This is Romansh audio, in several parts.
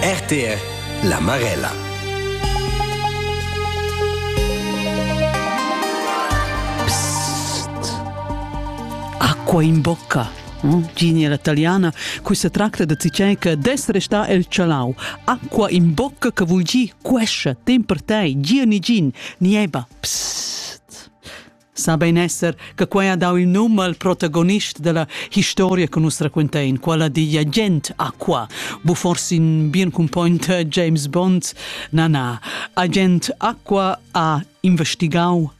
RTR La Marella Acqua in bocca Mm, Gigna italiana, cui se tracta de cichè che des resta el chalau. Acqua in bocca che vuol dir quescia, tem per te, gira ni gin, nieba. Psst. sa bein esser che quei ha dau il num al protagonist dalla historia che nus raquentein, quella digl agent Aqua, bu forsi in bien cumpognt James Bond. Na, na, agent Aqua ha investigau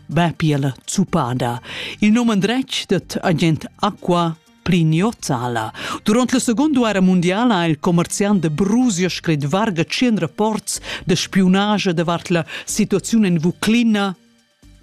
bè piela zupada. Il nome andretg det agent Aqua Prignozzala. Durant la Seconda Guerra Mondiala ha il commerciant de Brusio scrit varga 100 rapports de spiunage davart la situazione in Vuclina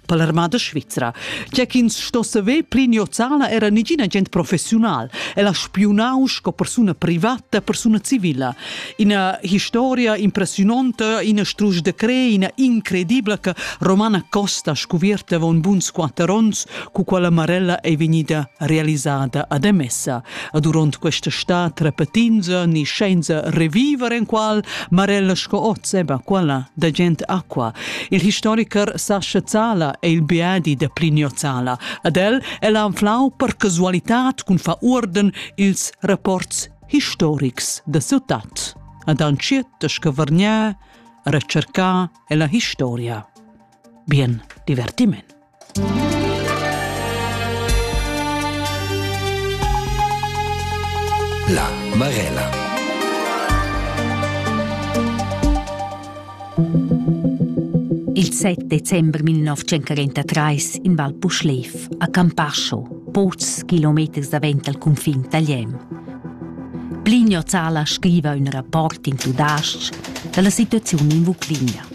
per l'armada svizra. Tge ch'ins sto saver pli niozala era nigina gent professiunal. El ha spiunau sco persuna privata, persuna civila. Ina historia impressiononta, ina strusch de cre, ina incredibla che Romana Costa scuvierta avon buns quatter onns, cu quella Marella è vegnida realisada ad Emessa. e durant questa stad repetinza ni scienza reviver en qual Marella sco oz eba quella da gent aqua. Il historiker Sascha Zala è il biadi da Plinio Zala. Ad el el anflau per casualitat cun fa urden ils rapports historics da ciutat. Ad anciet che vargnà, recercà e la historia. Bien divertiment. La Marella. Il 7 dezember 1943 in Val Puschlev, a Campascio, pocs kilometers davent dal cunfin tagliem. Plinio Zala scriva ün rapport in tudais-ch da la situaziun in Vucligna.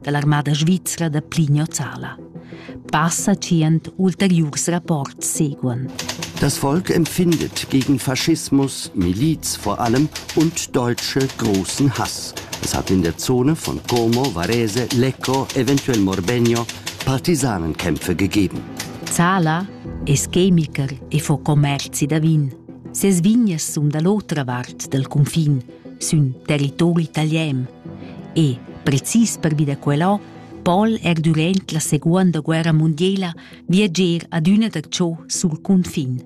da l'armada svizra da Plinio Zala. Passa tschient ulteriurs rapports seguan. Das Volk empfindet gegen Faschismus, Miliz vor allem und deutsche großen Hass. Es hat in der Zone von Como, Varese, Lecco, eventuell Morbenio Partisanenkämpfe gegeben. Zala es chemiker e fa commerzi da vin. Ses vignas sun da l'otra vart dal cunfin sün territori italian e, precis pervi da quellò, pon er durant la seguonda guerra mundiela viager adüna darcho sul cunfin.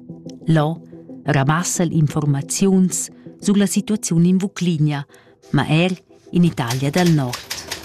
Là ramassa l'informaziuns sulla situaziun in Vucligna, ma er in Italia dal Nord.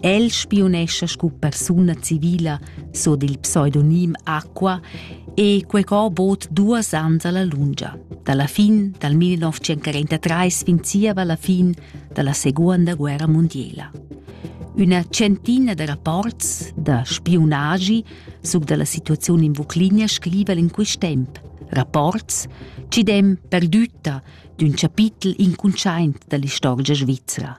El spiunescha sco persuna civila, sur dil pseudonim Aqua, e quei co bod duas ans alla lungia. Dalla fin dal 1943 fin zieva la fin dalla Seconda Guerra Mondiala. Üna centina da rapports da spiunagi suc dalla situazione in Vuclinia scriva in quist temp. Rapports ci dem perdütta d'ün chapitel incuntschaint dall'istorgia svizzera.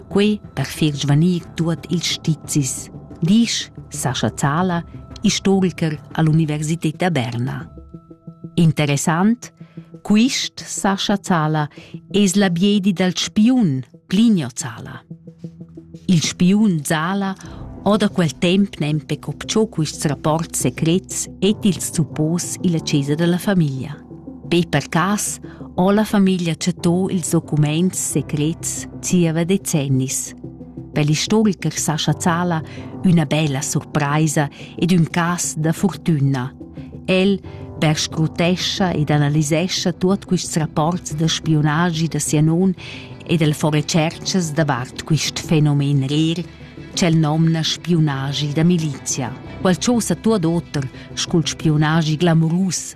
quei per far svanir tuot ils stizis, disch Sascha Zala, istoriker all'Universität da Berna. Interessant, quist Sascha Zala es la biedi dal spiun Plinio Zala. Il spiun Zala ho da quel temp nempe copciò quists rapports secrets et ils suppos illa chesa della famiglia. Be per cas ho la famiglia chattò ils documaints secrets zieva decennis. Per l'istoricher Sascha Zala üna bella surpraisa ed ün cas da fortüna. El perscrutescha ed analisescha tuot quists rapports da spiunagi da sia non ed el fa retscherchas davart quist fenomen rer ch'el nomna spiunagi da milizia. Quel chosa tuot oter scu'l spiunagi glamurus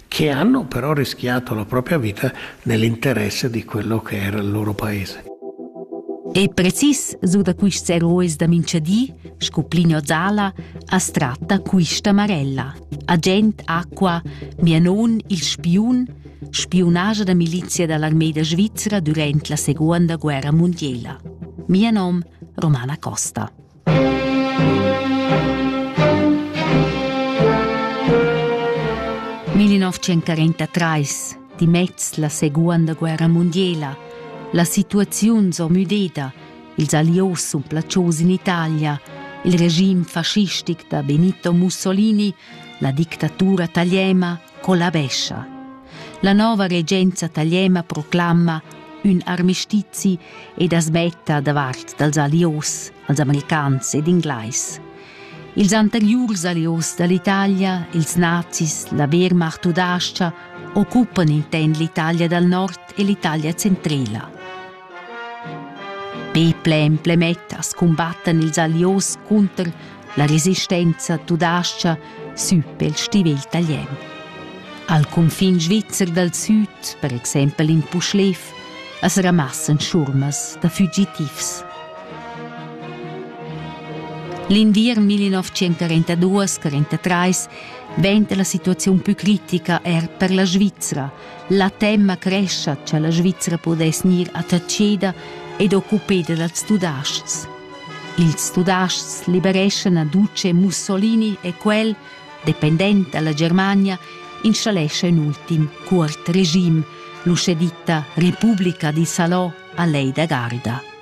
che hanno però rischiato la propria vita nell'interesse di quello che era il loro paese. Ei precis su da quists heroes da minchadi, sco Plinio Zala, as tratta quista Marella, agent acqua, mia non il spiun, spiunaja da milizia dall'armeda svizzera durant la seconda guerra mondiela. Mia nom Romana Costa. 1943 dimez la seguonda guerra mundiela. La situaziun s'ho müdeda, ils allios sun placios in Italia, il regim fascistic da Benito Mussolini, la dictatura taliena collabescha. La nova regenza tagliema proclama ün armistizi ed as metta davart dals alios, als americans ed inglais. Ils anteriurs alios dall'Italia, ils nazis, la Wehrmacht u d'Aschia, occupan inten l'Italia dal nord e l'Italia centrela. Peple e emplemettas cumbattan ils Allios cunter la resistenza tudascha sü pel stivel talian. Al cunfin svizzer dal süd, per exempel in Puschlev, as ramassan schurmas da fugitivs. L'inviern 1942-43 venta la situaziun più critica er per la Svizzera – La temma crescha cha la Svizra pudess gnir attacheda ed occupeda dals tudaschs. Ils tudaschs libereschan Aduce Mussolini e quel, dependent dalla Germania, installescha ün ultim cuort regime, l'uschè ditta Repubblica di Salò a lei da garda.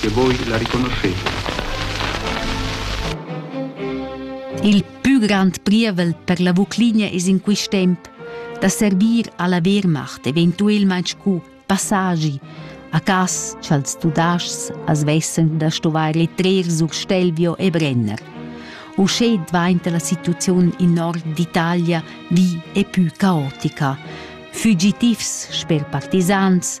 che voi la riconoscheter. Il pü grand prievel per la Vuclinia es in quist temp da servir alla Wehrmacht eventuelmaing scu passagi a cas cha'ls Tudascs as vessan da stuvair trer sur Stelvio e Brenner. Uschè dvainta la situaziun in nord d'Italia vi e pü caotica. Fugitivs sper partisans,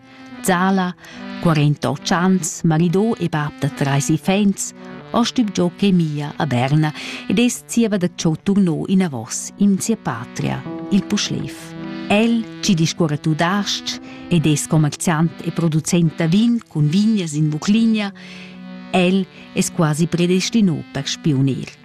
Zala, 48 ans, marido e bab da trais iffaints, ha stübgiò chemia a Berna ed es zieva da ciò turno inavos in sia patria, il Puschlev. El chi discuorra tudas-ch ed es commerziant e producent da vin cun vignas in Vucligna, el es quasi predestino per spiunir.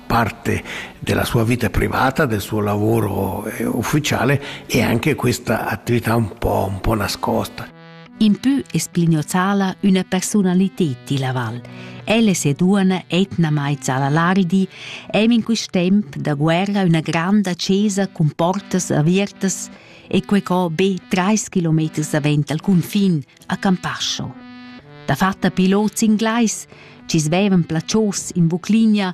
parte della sua vita privata, del suo lavoro eh, ufficiale e anche questa attività un po', un po nascosta. In più esplignozala una personalità di Laval. Elle se duana etnamai Zalalaridi, em in quist temp da guerra una granda cesa con portas avertas e quei co be trais kilometers davent al confin, a Campascio. Da fatta pilots inglais ci svevan placios in Vuclinia